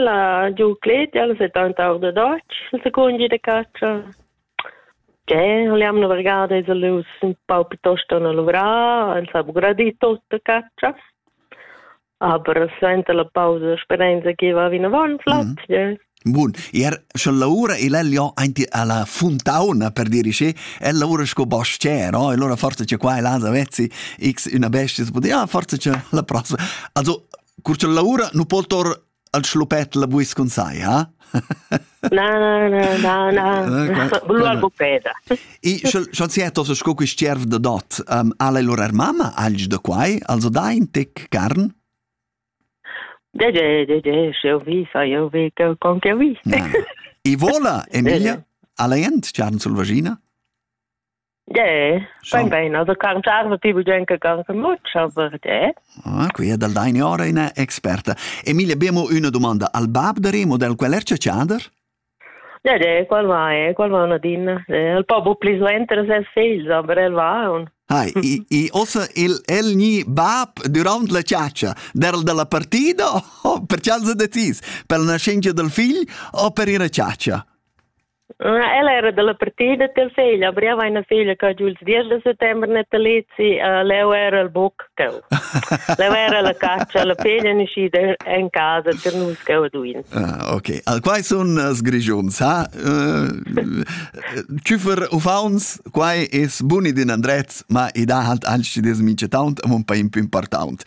La Giucletta, ella settanta our da Dotsch, il secund gi da catscha. Che, li am navigada es lus ün pau piuttosto na luvrà, el s'ha gradì tot da catscha. Aber suenter la pausa speranza che va vinavant flot, mhm. yeah. Bun, er sche lavora el ja aint alla fontauna per dirigere, el lavora sco bastier, no? E allora forse c'è qua e là da vezzi X una bestia, si pote, ah, forse c'è la prossima. Also, Cur cha l'aura nu po tor al schlupet la buis cun sai, ha? Na, na, na, na, na. Blua gupeda. E schon si etos sco quist tierv da dot, um, al ei lur mamma alg da quai, also dai in tic carn? De, de, de, de, sch'eu vi, sa eu vi, con che vi. E vola, Emilia, al ei ent charn sul vagina? Ge, bain bain, also kann charge ti bugen che can much, aber ge. Ah, qui è dal deine ora una experta. Emilia, abbiamo una domanda. Al bab de Remo del quel erce chander? Ja, de, qual va è? Qual va una din? El po bu pli suenter ses figls, aber el va un. Hai, i, i ossa il, el ni bab durant la ciaccia, del della partita o per cialza decis? Per la nascenza del figl o per ir a ciaccia? Ella era dalla partida tel fegl, aber io avevo una figlia che giù il 10 di settembre natalizi, uh, leu era il buc cheu. leu era la caccia, la peglia niscida in casa per nus cheu duin. Ah, ok. Al quai sun sgrigiuns, ha? Uh, Tschüfer uffauns, quai es buni din Andrez, ma i dà halt anci des mince taunt, am un pa impimpartaunt.